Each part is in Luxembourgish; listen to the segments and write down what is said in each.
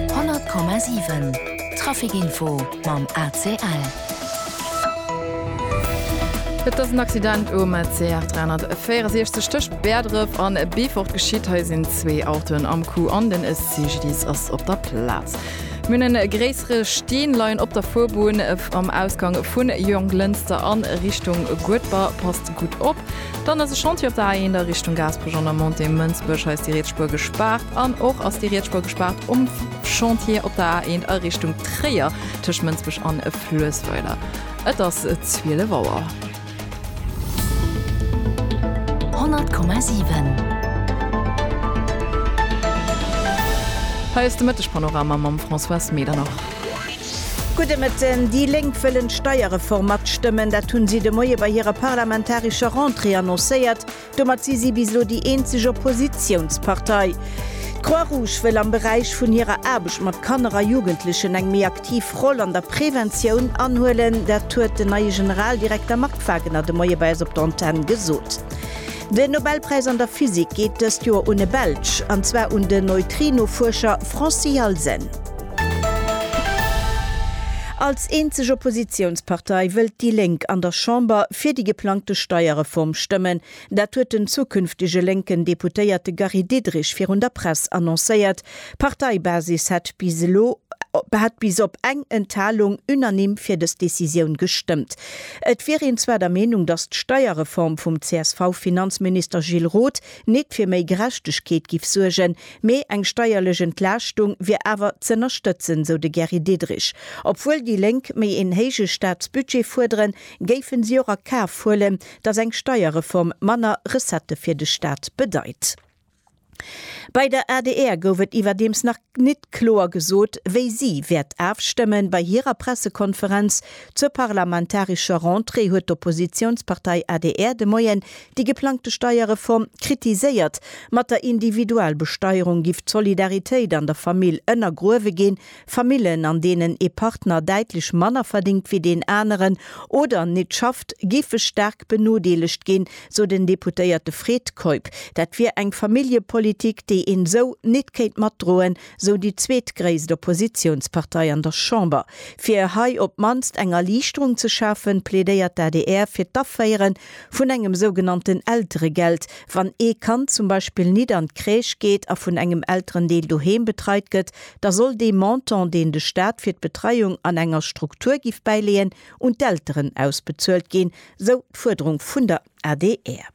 100,7 Trafic Info mam ACL. Et ass en Accident um CR 364 tëscht Bäerdref a Beefort geschitt. Hei sinn zwee Autoen am Coup an den CGDIS ass op der Plaz. Mir hunn e gréissere Steen leien op der Fuerbunn am Ausgang vun Jonglënster a Richtung Guedber. Passt gutt op. Dann ass e Chantier op der A1 a Richtung Gaasperech an der Montée Mënsbech. Hei ass déi riets Spuer gespaart. An och ass déi riets Spuer gespaart um Chantier op der A1 a Richtung Tréier tëscht Mënsbech an Fluessweiler. Et ass 12 Auer. 100,7. Hei ass de Mëtteg-Panorama mam Françoise Medernach. Gudde Mëtten, Déi Lénk wëllen d'Steierreform matstëmmen. Dat hunn si de Moie bei hirer parlamentarescher Rentrée annoncéiert. Domat si si bis elo déi eenzeg Oppositiounspartei. D'Croix-Rouge wëll am Beräich vun hirer Aarbecht mat Kanner a Jugendlechen eng méi aktiv Roll an der Preventioun anhuelen. Dat huet den neie Generaldirekter Marc Wagener de Moie bei eis op der Antenn gesot. Den Nobelpräis an der Physik geet dëst Joer un e Belsch, an zwar un den Neutrino-Fuerscher Francis Halsen. Als eenzeg Oppositiounspartei wëllt déi Lénk an der Chamber fir déi geplangte Steierreform stëmmen. Dat huet den zukünftege lénken Deputéierte Gary Diderich virun der Press annoncéiert. D'Parteibasis hat bis elo hat bis op eng Enthalung unanime fir dës Decisioun gestëmmt. Et wier een zwar der Meenung, datt d'Steierreform vum CSV-Finanzminister Gilles Roth nit fir méi Gerechtegkeet giff suergen, mee eng steierlech Entlaaschtung wier awer z'ënnerstëtzen, sou de Gary Diderich. Obwuel déi Lénk méi een héije Staatsbudget fuerderen, géifen si och a Kaf huelen, datt eng Steierreform manner Recettë fir de Staat bedeit. Bei der adr gouf et iwwerdeems nach nit kloer gesot, wéi si wäert afstëmmen. Bei hirer Pressekonferenz zur parlamentarescher Rentrée huet d'Oppositiounspartei adr de Moien déi geplangte Steierreform kritiséiert. Mat der Individualbesteierung giff d'Solidaritéit an der Famill ënnergruewe ginn, Famillen, an deenen ee Partner däitlech manner verdingt wéi deen aneren oder nit schafft, géife staark benodeelegt ginn, sou den Deputéierte Fred Keup. Dat wier eng Familljepolitik, déi een esou nit kéint matdroen, sou déi zweetgréisst Oppositiounspartei an der Chamber. Fir hei op d'mannst eng Erliichterung ze schafen, plädéiert d'ADR fir d'Aféiere vun engem sougenannten Elteregeld, wann ee Kand zum Beispill nit an d'Crèche geet a vun engem Elterendeel doheem betreit gëtt, da soll dee Montant, deen de Staat fir d'Betreiung an enger Struktur giff bäileeën, un d'Elteren ausbezuelt ginn, sou d'Fuerderung vun der adr.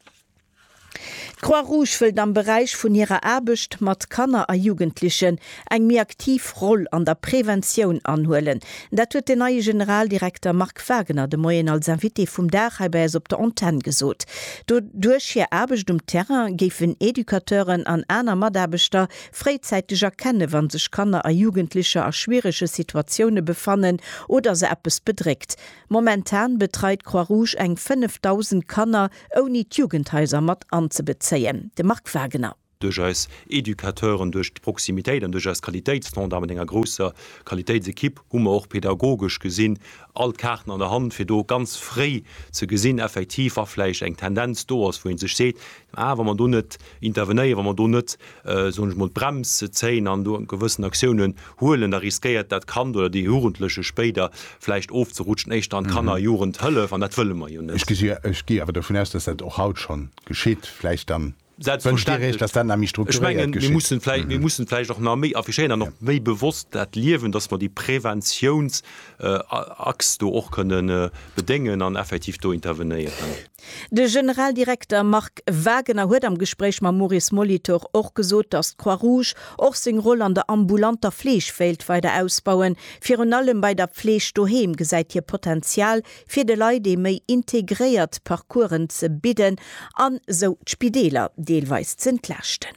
D'Croix-Rouge wëllt am Beräich vun hirer Aarbecht mat Kanner a Jugendlechen eng méi aktiv Roll an der Preventioun anhuelen. Dat huet den neie Generaldirekter Marc Wagner de Moien als Invité vum Dag hei bei eis op der Antenn gesot. Duerch hir Aarbecht um Terrain géifen Educateuren an aner Mataarbechter Fréizäiteg erkenne wann sech Kanner a Jugendlecher a schwierege Situatioune befannen oder se eppes bedréckt. Momentan betreit d'Croix Rouge eng 5.000 Kanner, ouni d'Jugendhaiser mat anzebezéien. De Marc Wagener. duerch eis Educateuren, duerch d'Proximitéit an duerch eis Qualitéitsstandarden mat enger grousser Qualitéitsekipp hu mer och pedagogesch gesinn all d'Kaarten an der Hand, fir do ganz fréi ze gesinn effektiv wa vläicht eng Tendenz do ass, wou ee sech seet, ah wa mer do net. Intervenéieren, wa mer do net, soen ech mol, d'Brems zéien an do gewëssen Aktiounen huelen, da riskéiert dat Kand oder dee Jugendleche spéider vläicht ofzerutschen, éischter an d'Kanner a Jugendhëllef, an dat wëlle mer jo net. Ech gi awer dovun aus, dass dat och haut scho geschitt. Vläicht dann wënscht Dir Iech, dass dat nach méi strukturéiert geschitt. Ech menge, mir mussen vläicht och nach méi affichéieren an och méi bewosst dat liewen, dass mer déi Preventiounsachs do och kënnen bedéngen an effektiv do intervenéieren. De Generaldirekter Marc Wagener huet am Gespréich mam Maurice Molitor och gesot, datt d'Croix-Rouge och seng Roll an der ambulanter Fleeg wéilt weider ausbauen. Virun allem bei der Fleeg doheem gesäit hie Potenzial, fir de Leit ee méi integréiert Parcoursen ze bidden an esou d'Spideeler deelweis ze entlaaschten.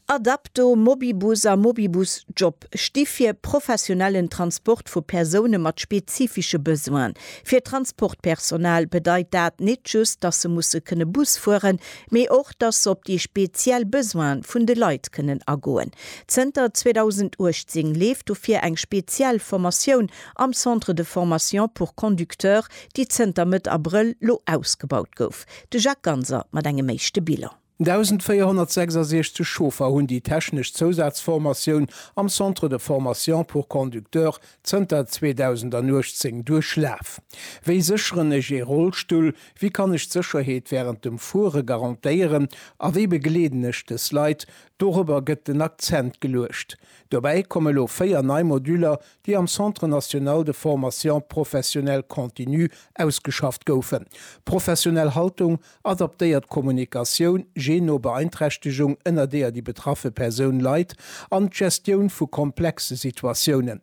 Adapto, Mobibus a Mobibus Job sti fir professionellen Transport vu Persoune mat spezifische Besoinen. Fir d'Transportpersonal bedeit dat nit just, dass se musse kënne Bus fueren, mee och, dass se op déi speziell Besoine vun de Leit kënnen agoen. Zënter 2018 leeft dofir eng speziell Formatioun am Centre de formation pour conducteurs, déi zënter Mëtt Abrëll lo ausgebaut gouf. De Jacques Ganser mat engem éischte Bilan. 1.466 Chauffer hunn déi technesch Zousazformatioun am Centre de formation pour conducteurs zënter 2018 duerchlaf. Wéi sécheren ech ee Rollstull? Wéi kann ech d'Sécherheet wärend dem Fuere garantéieren? A wéi begleeden ech dës Leit? Dorobber gëtt den Akzent geluecht. Dobäi komme lo 4 nei Moduller, déi am Centre national de formation professionnelle continue ausgeschafft goufen, Professionell Haltung, Adaptéiert Kommunikatioun, je no Beeinträchtegung, ënner deeër déi betraffe Persoun leit, an d'Gestioun vu komplexe Situatiounen.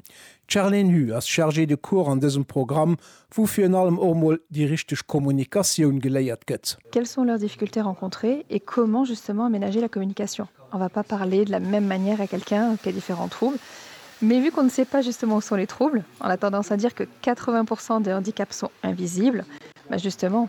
D'Charlene Hue ass Chargée de cours an dësem Programm, wou virun allem och mol déi richteg Kommunikatioun geléiert gëtt. Quelles sont leurs difficultés rencontrées et comment justement aménager la communication? On va pas parler de la même manière à quelqu'un qui a différents troubles, mais vu qu'on ne sait pas justement où sont les troubles, on a tendance à dire que 80 % des handicaps sont invisibles, ben justement,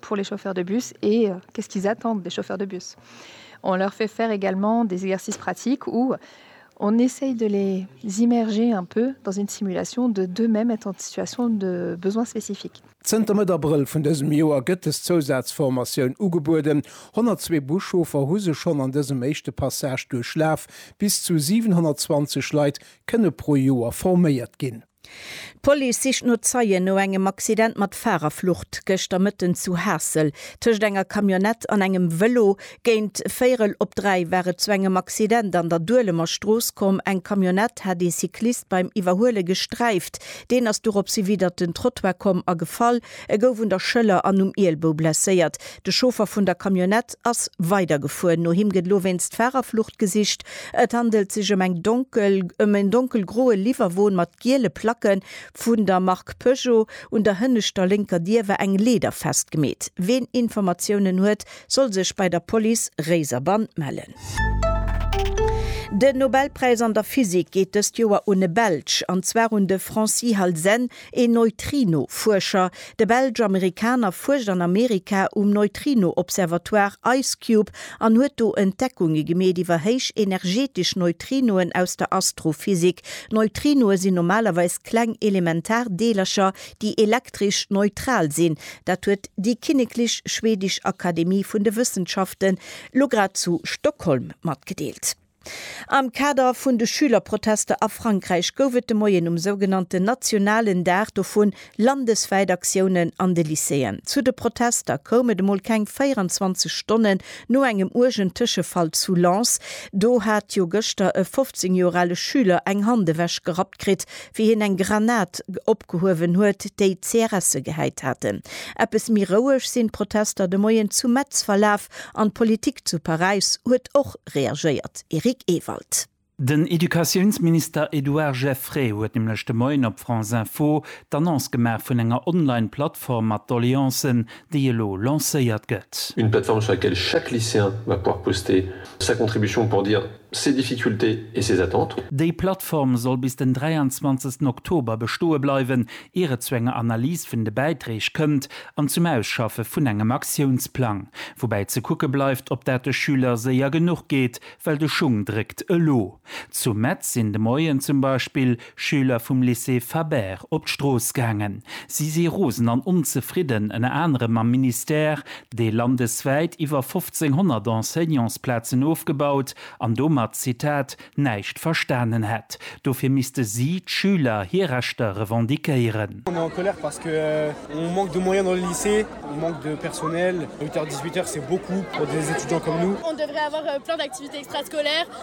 pour les chauffeurs de bus et qu'est-ce qu'ils attendent des chauffeurs de bus. On leur fait faire également des exercices pratiques où on essaye de les immerger un peu dans une simulation de d'eux-mêmes être en situation de besoin spécifique. Zënter Mëtt Abrëll vun dësem Joer gëtt des Zousazformatioun ugebueden. 102 Buschauffer hu se schonn an dësem éischte Passage duerchlaf. Bis zu 720 Leit kënne pro Joer forméiert ginn. D'Police sicht no Zeien no engem Accident mat Farerflucht gëschter Mëtten zu Haassel. Tëscht enger Camionnette an engem Vëlo géint véierel op dräi war et zu engem Accident an der Duelemer Strooss komm. Eng Camionnette hat ee Cyclist beim Iwwerhuele gesträift. Deen ass dorops hiwiddert den Trottoir komm a gefall. E gouf un der Schëller an um Ielbou blesséiert. De Chauffer vun der Camionnette ass weidergefuer. No him gëtt elo wéinst Fahrerflucht gesicht. Et handelt sech ëm eng donkel ëm en donkelgroe Liwwerwon mat giele Placken vun der Mark Peugeot. Un der hënneschter lénker Dier war eng Leeder festgemeet. Ween Informatiounen huet, soll sech bei der Police Réiserbann mellen. Den Nobelpräis an der Physik geet dëst Joer un e Belsch, an zwar un de Francis Halzen, Een Neutrino-Fuerscher, de Belsch-Amerikaner fuerscht an Amerika um Neutrino-Observatoire IceCube an huet do Entdeckunge gemeet iwwer héich energetesch Neutrinoen aus der Astrophysik. Neutrinoe sinn normalerweis kleng elementar Deelercher, déi elektresch neutral sinn. Dat huet déi Kinneklech Schwedesch Akademie vun de Wëssenschaften lo grad zu Stockholm matgedeelt. Am Kader vun de Schülerprotester a Frankräich gouf et de Moien um sougenannten nationalen Dag dovun landeswäit Aktiounen an de Lycéeën. Zu de Protester koum et emol keng 24 Stonnen no engem uergen Tëschefall zu Lens. Do hat jo gëschter e 15 Joer ale Schüler eng Hand ewech gerappt kritt, wéi hien eng Granat opgehuewen huet, déi CRSe gehäit haten. Eppes méi roueg sinn d'Protester de Moien zu Metz verlaf. Kap an d'Politik zu Paräis huet och reagéiert, Eric Ewald. Den Educatiounsminister Edouard Geffray huet nämlech de Moien op France Info d'Annonce gemaach vun enger Online-Plattform mat Doleancen, déi elo lancéiert gëtt. Une plateforme sur laquelle chaque lycéen va pouvoir poster sa contribution pour dire. Ses difficultés et ses attentes. Déi Plattform soll bis den 23 Oktober bestoe bleiwen, ier et zu enger Analys vun de Bäiträg kënnt an zum Ausschaffe vun engem Aktiounsplang. Woubäi ze kucke bleift, ob dat de Schüler séier genuch geet, well de Schung dréckt elo. Zu Metz sinn de Moien zum Beispill Schüler vum Lycée Fabert op d'Strooss gaangen. Si si rosen an onzefridden, ënner anerem mam Ministère, dee landeswäit iwwer 1.500 Enseignantsplazen ofgebaut an domat, Zitat, näischt verstanen hätt. Dofir misste si, d'Schüler, hir Rechter revendiquéieren.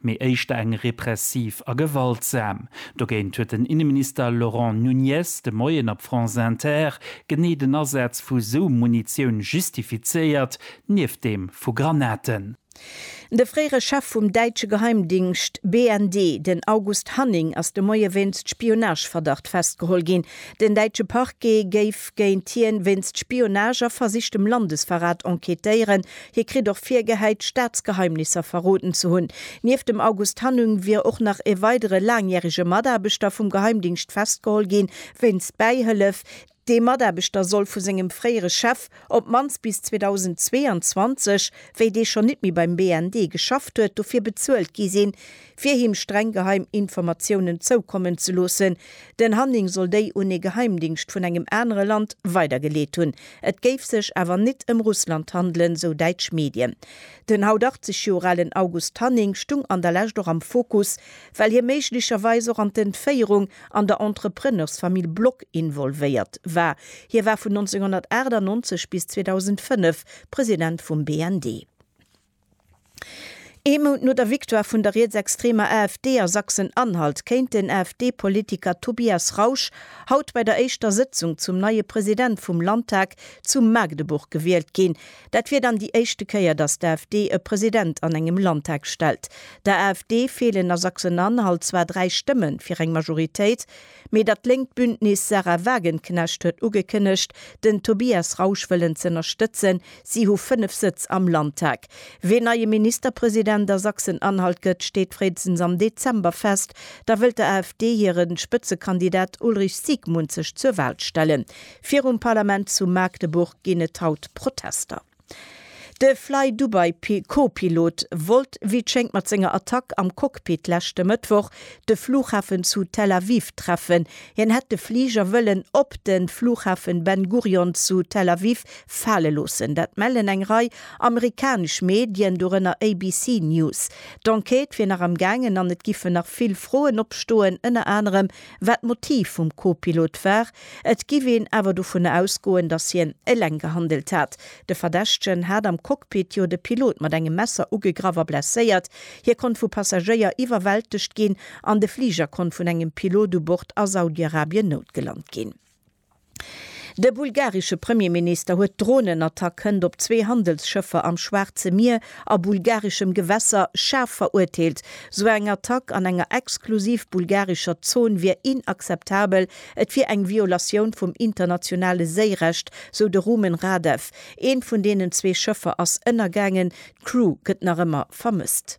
mee éischter eng repressiv a gewaltsam. Dogéint huet den Inneminister Laurent Nunez de Moien op France Inter genee den Asaz vu sou Munitioun justifizéiert, nieft deem vu Granaten. De fréiere Chef vum däitsche Geheimdingscht BND, den August Hanning, ass de Moie wéinst Spionageverdacht festgeholl ginn. Den däitsche Parquet géif géint hien wéinst Spionage a versichtem Landesverrat enquêtéieren, Hie kritt och virgehäit, Staatsgeheimnisser verroden ze hunn. Nieft dem August Hannung wier och nach e weidere laangjärege Mataarbechter vum Geheimdingscht festgeholl gi wéinst Bäihëllef. Dee Mataarbechter soll vu sengem fréiere Chef op d'mannst bis 2022, wéi dee schonn nit méi beim BND geschafft huet, dofir bezuelt gi sinn, fir him streng geheim Informatiounen zoukommen ze loossen. Den Hanning soll déi un ee Geheimdingscht vun engem anere Land weidergeleet hunn. Et géif sech awer nit ëm Russland handelen, sou däitsch Medien. Den haut 80 Joer alen August Hanning stung an der Lescht och am Fokus, well hie méiglecherweis och an d'Entféierung an der Entrepreneursfamill Block involvéiert war. Hie war vun 1998 bis 2005 President vum BND. Ee Mount no der Victoire vun der rietsextremer AfD a Sachsen-Anhalt kéint den AfD-Politiker Tobias Rausch haut bei der éischter Sëtzung zum neie President vum Landtag zu Magdeburg gewielt ginn. Dat wier dann déi éischte Kéier, datt d'AfD e President an engem Landtag stellt. Der AfD feelen a Sachsen-Anhalt zwar dräi Stëmme fir eng Majoritéit. Mee dat lénkt Bündnis Sahra Wagenknecht huet ugekënnegt, den Tobias Rausch wëllen z'ënnerstëtzen. Si hu 5 Sëtz am Landtag. Wien neie Ministerpresident a Sachsen-Anhalt gëtt, steet fréistens am Dezember fest. Da wëllt der AfD hire Spëtzekandidat Ulrich Siegmund sech zur Wal stellen. Virum Parlament zu Magdeburg ginn et haut Protester. De Flydubai-Co-Pilot wollt wéi et schéngt mat senger Attack am Cockpit leschte Mëttwoch de Flughafen zu Tel Aviv treffen. Hien hätt de Fliger wëllen op de Flughafen Ben Gurion zu Tel Aviv fale loossen. Dat mellen eng Rei amerikanesch Medien, dorënner ABC News. D'Enquête wier nach am gaangen an et giffen nach vill Froen opstoen, ënner anerem Wat d'Motiv vum Co-Pilot war, et giff een awer dovun ausgoen, dass hien eleng gehandelt hat. De Verdächtegen hat am Cockpit jo de Pilot mat engem Messer ugegraff a blesséiert. Hie konnt vu Passagéier iwwerwältegt ginn an de Fliger konnt vun engem Pilot u Bord a Saudi-Arabien noutgelant ginn. De bulgaresche Premierminister huet d'Dronenattack hënt op zwee Handelsschëffer am Schwaarze Mier a bulgareschem Gewässer schaarf verurteelt. Sou eng Attack an enger exklusiv bulgarescher Zon wier inakzeptabel, et wier eng Violatioun vum internationale Séirecht, sou de Rumen Radev. Eent vun deenen zwee Schëffer ass ënnergaangen, d'Crew gëtt nach ëmmer vermësst.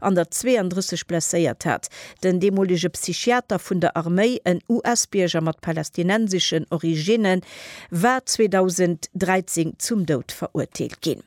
an der 32 blesséiert hat. Den deemolege Psychiater vun der Arméi, en US-Bierger mat palästinenseschen Originne war 2013 zum Doud verurteelt ginn.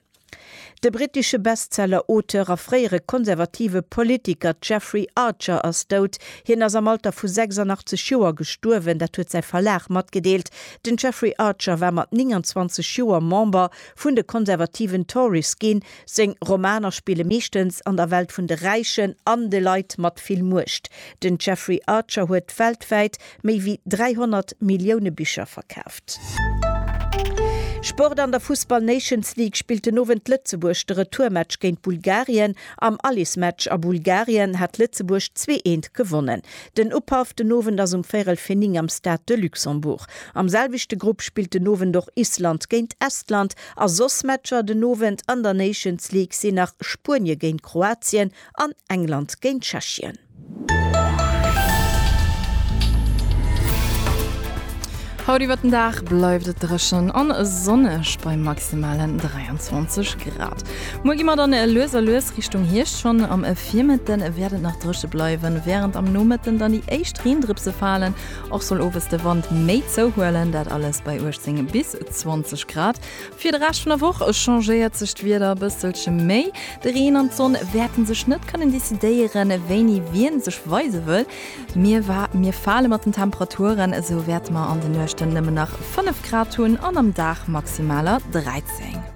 De brittesche Bestseller-Auteur a fréiere konservative Politiker Jeffrey Archer ass dout. Hien ass am Alter vu 86 Joer gestuerwen, dat huet säi Verlag matgedeelt. Den Jeffrey Archer war mat 29 Joer Member vun de konservativen Tories ginn, Seng Romaner spille meeschtens an der Welt vun de Räichen an de Leit mat vill Muecht. Den Jeffrey Archer huet weltwäit méi wéi 300 Millioune Bicher verkaaft. Sport An der Fussball Nations League spillt den Owend Lëtzebuerg de Retourmatch géint Bulgarien. Am Alismatch a Bulgarien hat Lëtzebuerg zwee eent gewonnen. Den Upaff den Owend ass um véirel fir 9 am Stade de Luxembourg. Am selwechte Grupp spillt den Owend och Island géint Estland A soss Matcher den Owend an der Nations League sinn nach Spuenie géint Kroatien an England géint Tschechien. Haut iwwer den Dag bleift et dréchen a sonneg bei maximalen 23 Grad. Muer gi mer dann lues a lues Richtung Hierscht, schonn am Virmëtte wäert et nach dréche bleiwen, wärend am Nomëtten dann déi éischt Reendrëpse falen. Och soll owes de Wand méi zouhuelen, dat alles bei 18 bis 20 Grad. Fir de Rescht vun der Woch changéiert sech d'Wieder e bësselche méi. De Reen an d'Sonn wäerten sech net kënnen decidéieren, wéini wien sech weise wëll. Mir wa mir fale mat den Temperaturen, esou wäerte mer an de Nuechten nëmmen nach 5 Grad hunn an am Dag Maximaler 13.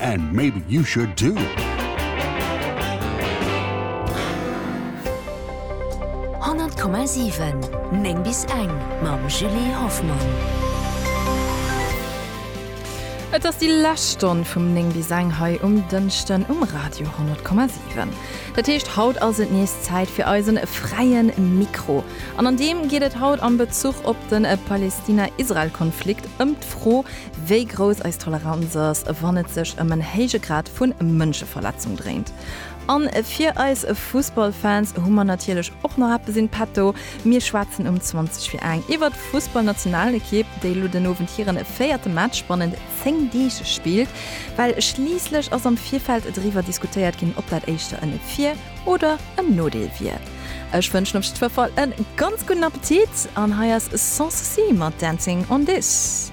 And maybe you should too! Honnert Komma siwen, néng bis eng mam Julie Hoffmann. Et ass déi lescht Stonn vum néng bis eng hei um Dënschden um Radio Honnert Komma siwen. Dat heescht, haut ass et nees Zäit fir eisen Fräie Mikro. An an deem geet et haut am Bezuch op de Palestina-Israel-Konflikt ëm d'Fro, Wéi grouss eis Toleranz ass, wann et sech ëm en héije Grad vu Mënscheverletzung dréint. A fir eis Fussballfans hu mer natierlech och nach eppes in petto. Mir schwätzen um 20 fir eng iwwert d'Fussballnationalekipp, déi elo den Owend hiren véierte Match bannent 10 Deeg spillt. Well schliisslech ass am Virfeld driwwer diskutéiert ginn, ob dat éischter en Vir oder en Nodeel wier. Ech wënschen op jiddwer Fall e ganz gudden Appetit an hei ass Sans Souci mat Dancing on This.